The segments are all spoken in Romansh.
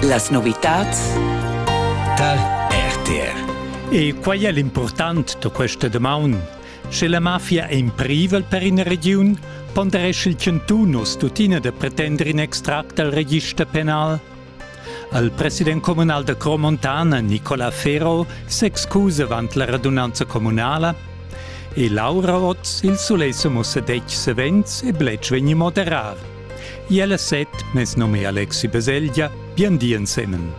Las novitads tar RTR. E quai è l'impurtant da questa damaun. Sche la mafia è in privel per ina regiun, ponderesce il Cantun uss tuttina da pretender in extract dal register penal. Il president communal da Cromontana, Nicola Ferro, s'excusa avant la radunanza communala e Laura Otz il sulei mussa detg savens e bletsch vegni moderar. Iella set mes nome è Alexi Beseglia, bien di ensemen.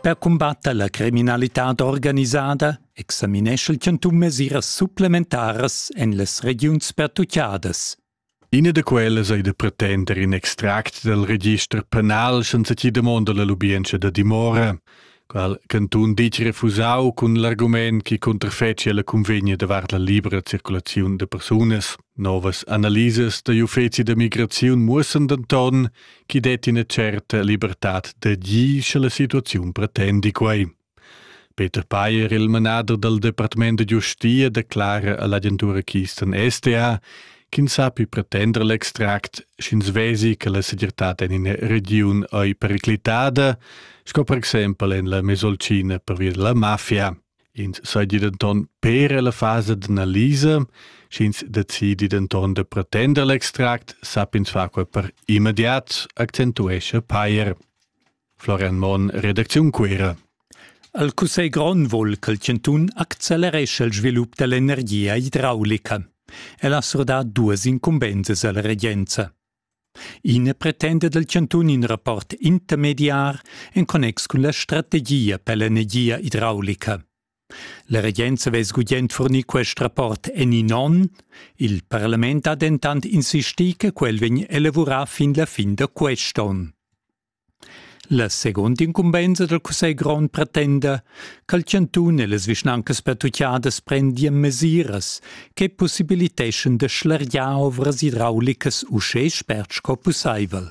Per combatter la criminalitad organisada examineschel ch'en tun mesiras supplementaras en las regiuns pertuchadas. Ina da quellas ei da pretender in extract dal register penal senza chi damonda la lubientscha da dimora, qual cantun ditg refusau cun l'argument chi cunterfetschia la cunvegna davart la libra circulaziun da persunas. Novas analisas da l'Uffeci da migraziun muossan denton chi detti ina certa libertad d'agir sche la situaziun pretendi quei. Peter Payer, il manader dal departament da giustia, declara a l'agentura Kisten SDA ch'ins sappi pretender l'extract, sch'ins vesi che la segirtad en ina regiun ei periclitada, sco per exempel en la Mesolcina pervia della mafia. Ins seigi denton per la fasa d'analisa, sch'ins decidi denton da pretender l'extract, sapp'ins far quei per immediat, accentuescha Payer. Florian Monn, redacziun Cuera. El Cussegl grond vul ch'il chantun acceleresce il svilup dell'energia idraulica. El ha surdà duas incumbensas alla regenza. Ina pretenda del chantun in rapport intermediar en connex cun la strategia per l'energia idraulica. La regenza vess gugent fornir quest rapport en in onn, il parlament ha dentant insistì che quel vegn elavurà fin la fin da quest'onn. La seguonda incumbenza dal cussegl grond pretenda cha'l chantun e las vischnancas pertuchadas prendian mesiras che pussibiliteschan da schlergiar ovras idraulicas uschè spert sco pussaivel.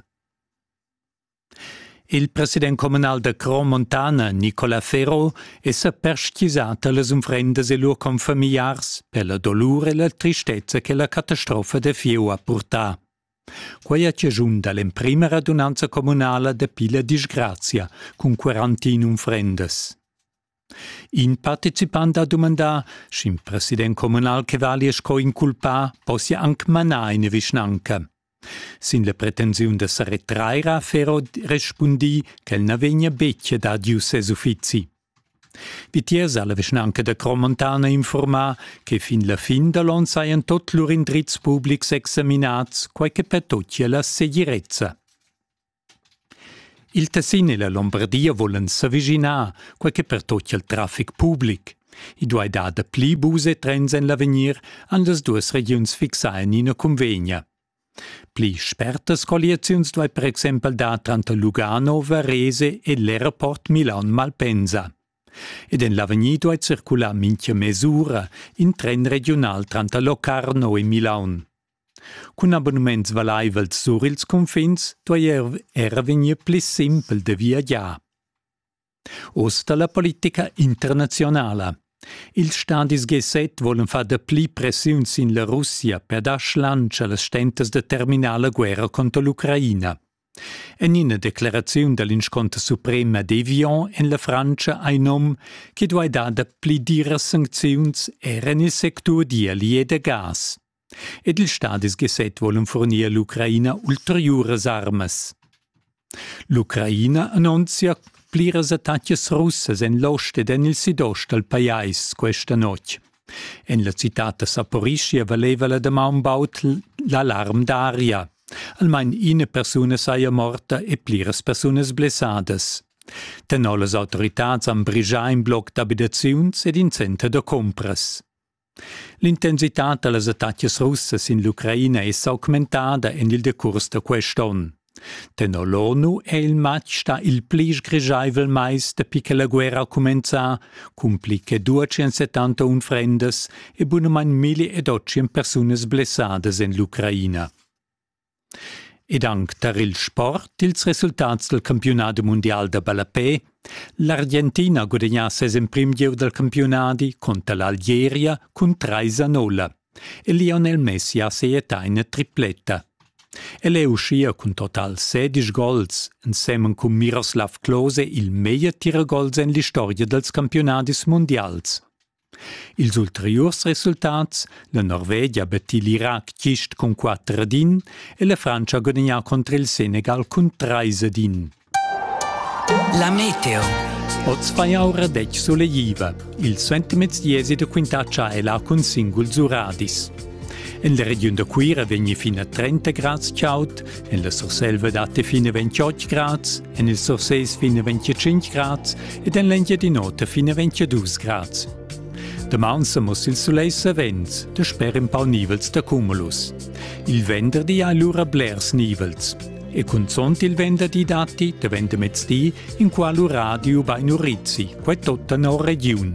Il president communal da Cromontana, Nicola Ferro, è sa perstgisà tar las unfrendas e lur confamiliars per la dolur e la tristezza che la catastrofa da fieu ha purtà. Quei ha chaschun dall'emprema radunanza communala dapi la disgrazia cun quarantin unfrendas. In participant ha dumandà, sch'in president communal che vali sco inculpà possia anc manar ina vischnanca. Sin la pretensiun da sa retrair ha Ferro respundì ch'el na vegnia betg dad ius ses uffizi. Vitiers ha la vischnanca da Cromontana informà che fin la fin da l'on sajan tot lur indrizs publics examinats, quai che pertochia la segirezza. Il Tessin e la Lombardia volan s'avischinar, quai che pertochia il traffic public. I duai dar dapli bus e trens en l'avegnir, han las duas regiuns fixà en ina cunvegna. Pli spertas colliaziuns duai per exempel dar tranter Lugano, Varese e l'aeroport Milan-Malpensa. Ed en l'avegnir duai circular mintga mes'ura in tren regiunal tranter Locarno e Milaun. Cun abonnements valaivels sur ils cunfins duai er vegnir pli simpel da viagiar. Oz da la politica internaziunala. Ils stadis G7 volen far dapli pressiun sin la Russia per dar schlansch a las stentas da terminar la guerra contro l'Ucraina. En ina declaraziun da l'insconter suprema d'Evian en la Frantscha ein nom che duai dar dapli diras sancziuns er en il sectur d'ieli e da gas. ed ils stadis G7 volan furnir all'Ucraina ulteriuras armas. L'Ucraina annunzia pliras attacas russas en l'ost ed en il sidost dal pajais questa notg. En la citad da Saporischia valeva la damaun baud l'alarm d'aria. Almain ina persuna saja morta e pliras persunas blessadas. Tenor las autoritads han brigià in bloc d'abitaziuns ed in center da compras. L'intensitad da las attacas russas in l'Ucraina è s'augmentada en il decurs da quest onn. Tenor l'ONU è il matg stà il pli sgrischaivel mais dapi che la guerra ha cumenzà, cun pli che 270 unfrendas e bunamain 1000 ed 800 persunas blessadas en l'Ucraina. Ed anc tar il sport ils resultats dal campiunadi mundial da ballapè. L'Argentina ha gudagnà ses emprim gieu dal campiunadi cunter l'Algeria cun trais a nolla e Lionel Messi ha seiettà ina tripletta. El è uschia cun total sedisch gols, ensemen cun Miroslav Klose il meglier tiragols en l'istorgia dals campiunadis mundials. Ils ulteriurs resultats, la Norvegia betti l'Irac gist cun quatter ed in e la Frantscha ha gudagnà cunter il Senegal cun trais ed in. La meteo. Oz fa jau radetg sulegliva. Il suentermezdi èsi da quintatscha è là cun singul zuradis. En la regiun da Cuira vegni fin a 30 grads chaud, En la Surselva datti fin a 28 grads, en il Surses fin a 25 grads ed en l'Engiadin'Ota fin a 22 grads. Daman sa muss il sulei savens, da sper in pau nivels da cumulus. Il venderdi ha lura blers nivels. E cunzont il venderdi datti, da vendermezdi, in qual uradio bei Nurizzi, quai tutta no regiun.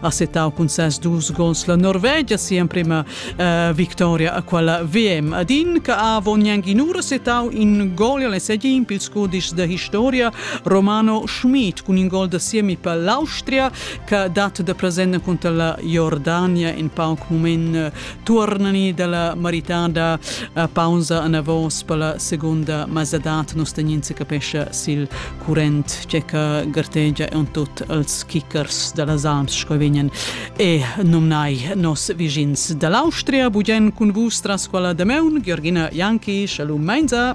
ha settau cun ses dus gols la Norvegia sia emprema uh, victoria a quella VM. Ad in che ha avon ura settau in gol alle segin pils cudisch da historia Romano Schmid cun in gol da siemi per l'Austria che dat da present conta la Jordania in pauc moment Tuornani dalla maritada a pausa anavos per la segunda mazzadat nus tegnin se capescha sil current che ca gartegia on tut als kickers dalla Salms sco vegnan e numnai nos vigins dall'Austria bugen cun vus tras quella de meun Georgina Janki shalom Meinza